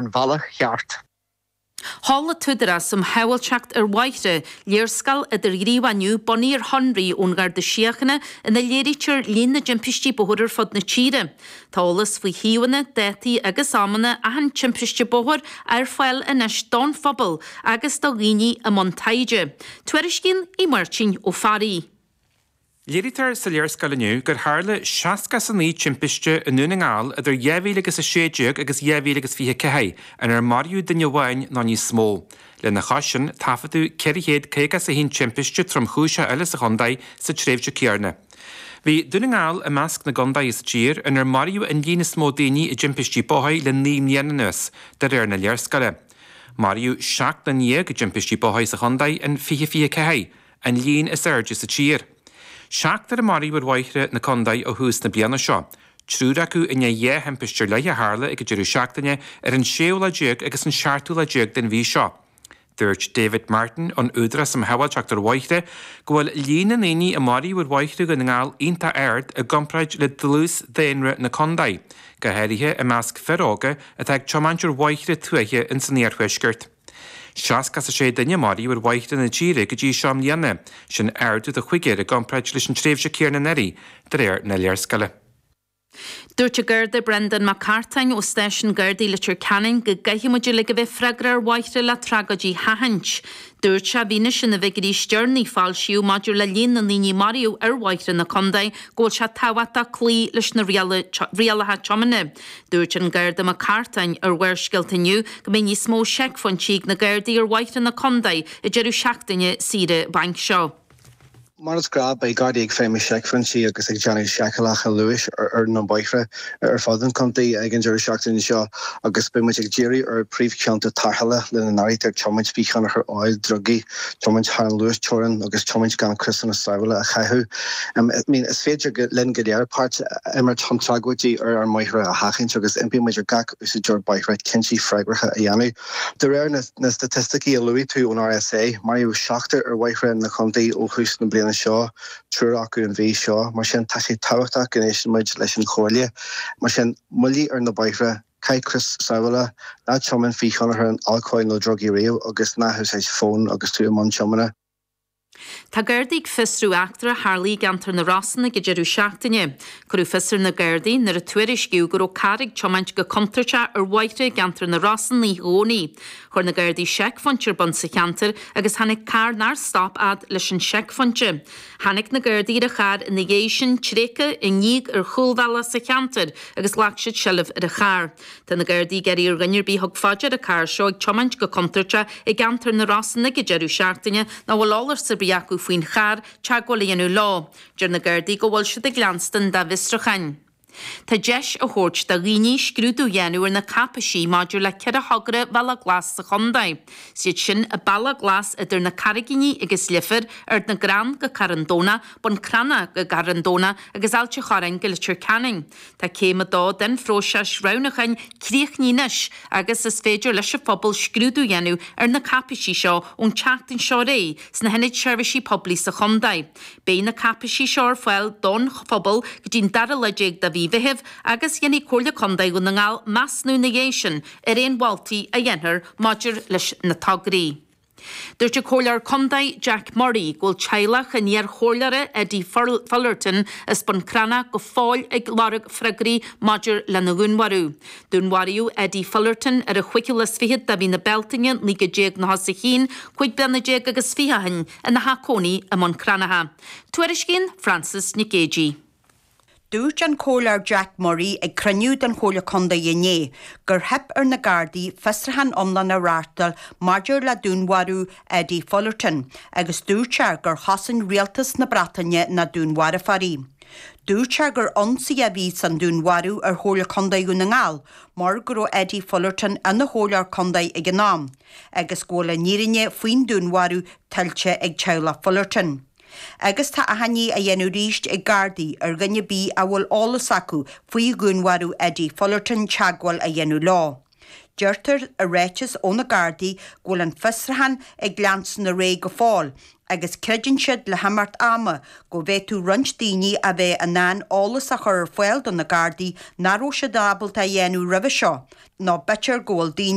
an bhealach cheart. Tá ag an Údarás um Shábháilteacht ar Bhóithre, léarscáil idirghníomhach inniu bunaithe ar shonraí ón Gharda Síochána ina léirítear líon na dtimpistí bóthair ar fud na tíre. Tá eolas faoi shuíomhanna, dátaí agus amanna achan timpiste bóthair ar fáil anois don phobal agus do dhaoine i mbun taighde. Tuairiscíonn Aodh Máirtín Ó Fearraigh. Léirítear sa léarscáil inniu gur tharla seasca is a naoi timpiste i nDún na nGall idir dhá mhíle agus a sé déag agus dhá mhíle agus fiche a ceathair, inar maraíodh duine amháin nó níos mó. Lena chois sin, taifeadadh ceithre chéad caoga is a haon timpiste tromchúiseach eile sa chontae sa tréimhse céanna. Bhí Dún na nGall i measc na gcontae sa tír inar maraíodh an líon is mó daoine i dtimpistí bóthair le naoi mbliana anuas, de réir na léarscáile. Maraíodh seacht nduine dhéag i dtimpistí bóthair sa chontae in fiche fiche a ceathair. an líon is airde sa tír. Seachtar a maraíodh ar bhóithre na contae ó thús na bliana seo, triúr acu i ndiaidh dhá thimpist ar leith a tharla ag an deireadh seachtaine ar an séú lá déag agus an seachtú lá déag den mhí seo. Dúirt David Martin ón Údarás um Shábháilteacht ar Bhóithre go bhfuil líon na ndaoine a maraíodh ar bhóithre Dhún na nGall iontach ard i gcomparáid le dlús daonra na contae, go háirithe i measc fir óga atá ag tiomáint ar bhóithre tuaithe ins an iarthuaisceart. Seasca is a sé duine a maraíodh ar bhóithre na tíre go dtí seo i mbliana, sin ardú de chúigear i gcomparáid leis an tréimhse céanna anuraidh, de réir na léarscáile. Dúirt an Garda Brendan Mac Cartáin ó Stáisiún Gardaí Leitir Ceanainn go gcaithfimid uilig a bheith freagrach ar bhóithre le tragóidí a sheachaint. Dúirt sé, i bhfianaise na bhfigiúirí is deireanaí a foilsíodh maidir le líon na ndaoine a maraíodh ar bhóithre na contae go bhfuil sé tábhachtach cloí leis na rialacha tiomána, Dúirt an Garda Mac Cartáin ar Bharrscéalta inniu go mbeidh níos mó seicphointí ag na Gardaí ar bhóithre na contae ag deireadh seachtaine saoire bainc seo. Mar is gnáth beidh Gardaí ag feidhmiú seicphointí agus ag déanamh seiceálacha luais ar na bóithre ar fud an Chontae ag an deireadh seachtaine seo agus beidh muid ag díriú ar phríomhchionta tarrthála lena n-áirítear tiomáint faoi thionchar óil, drugaí. tiomáint thar an luasteorainn agus tiomáint gan criosanna sábhála a chaitheamh. I mean, is féidir linn go léir páirt a imirt chun tragóidí ar ár mbóithre a sheachaint agus impíonn muid ar gach úsáideoir bóithre cinntí freagracha a dhéanamh. De réir na staitisticí a luaigh tú ón RSA, maraíodh seachtar ar bhóithre na contae ó thús na bliana seo, triúr acu an mhí seo. Mar sin, tá sé tábhachtach go n-éisteann muid leis an chomhairle. Mar sin, moilligh ar na bóithre. Caith crios sábhála, ná tiomáin faoi thionchar alcóil nó drugaí riamh agus ná húsáid fón agus tú i mbun tiomána. Tá Gardaí ag fiosrú eachtra a tharlaigh i gceantar na Rosann ag an deireadh seachtaine. Cuireadh fios ar na Gardaí nuair a tuairiscíodh go raibh carr ag tiomáint go contúirteach ar bhóithre i gceantar na Rosann oíche Dhomhnaigh. Chuir na Gardaí seicphointe ar bun sa cheantar agus tháinig carr nár stop siad leis an seicphointe. Tháinig na Gardaí ar an charr ina dhiaidh sin, tréigthe, i ndíog ar chúlbhealach sa cheantar agus ghlac siad seilbh ar an charr. Tá na Gardaí ag iarraidh ar dhuine ar bith a thug faoi deara an carr seo ag tiomáint go contúirteach i gceantar na Rosann ag an deireadh seachtaine nó a bhfuil eolas ar bith acu faoin charr teagmháil a dhéanamh leo. Deir na Gardaí go bhfuil siad ag leanstan dá bhfiosrucháin. Tá deis á tabhairt do dhaoine scrúdú a dhéanamh ar na cáipéisí maidir le ceithre thogra bhealach glas sa chontae. Is iad sin, an bealach glas idir na Carraiginí agus Leifear, Ceann na dTrí gCrann go Carn Domhnach, Bun Cranncha go Carn Domhnach agus Ailt an Chorráin go Leitir Ceanainn. Tá céim a dó den phróiseas roghnúcháin críochnaithe anois agus is féidir leis an phobal scrúdú a dhéanamh ar na cáipéisí seo ón tseachtain seo ar aghaidh sna hIonaid Seirbhísí Poiblí sa chontae. Beidh na cáipéisí seo ar fáil don phobal go dtí an dara lá déag de mhí Mheithimh agus déanfaidh Comhairle Contae Dhún na nGall measnú ina dhiaidh sin ar aon mholtaí a dhéanfar maidir leis na tograí. Dúirt an Comhairleoir Contae Jack Murray go bhfuil teaghlach an iar-Chomhairleora Eddie Fullerton as Bun Cranncha go fóill ag lorg freagraí maidir lena dhúnmharú. Dúnmharaíodh Eddie Fullerton ar an 25ú lá de mhí na Bealtaine 1991 cúig bliana déag agus fiche ó shin ina theach cónaithe i mBun Cranncha. Tuairiscíonn Frances Nic Géadaigh. Dúirt an Comhairleoir Jack Murray ag cruinniú den Chomhairle Contae inné gur theip ar na Gardaí fiosrúchán iomlán a reáchtáil maidir le dúnmharú Eddie Fullerton agus dúirt sé gur chosain Rialtas na Breataine na dúnmharfóirí. Dúirt sé gur ionsaí a bhí sa dúnmharú ar Chomhairle Contae Dhún na nGall mar go raibh Eddie Fullerton ina Chomhairleoir Contae ag an am. agus go bhfuil an fhírinne faoin dúnmharú tuillte ag teaghlach Fullerton. Agus tá achainí á dhéanamh arís ag Gardaí ar dhuine ar bith a bhfuil eolas acu faoi dhúnmharú Eddie Fullerton teagmháil a dhéanamh leo. Deirtear i ráiteas ó na Gardaí go bhfuil an fiosrúchán ag leanstan ar aghaidh go fóill agus creideann siad, le himeacht ama, go bhféadfadh roinnt daoine a bheith in ann eolas a chur ar fáil do na Gardaí nach raibh siad ábalta a dhéanamh roimhe seo, nó b'fhéidir go bhfuil daoine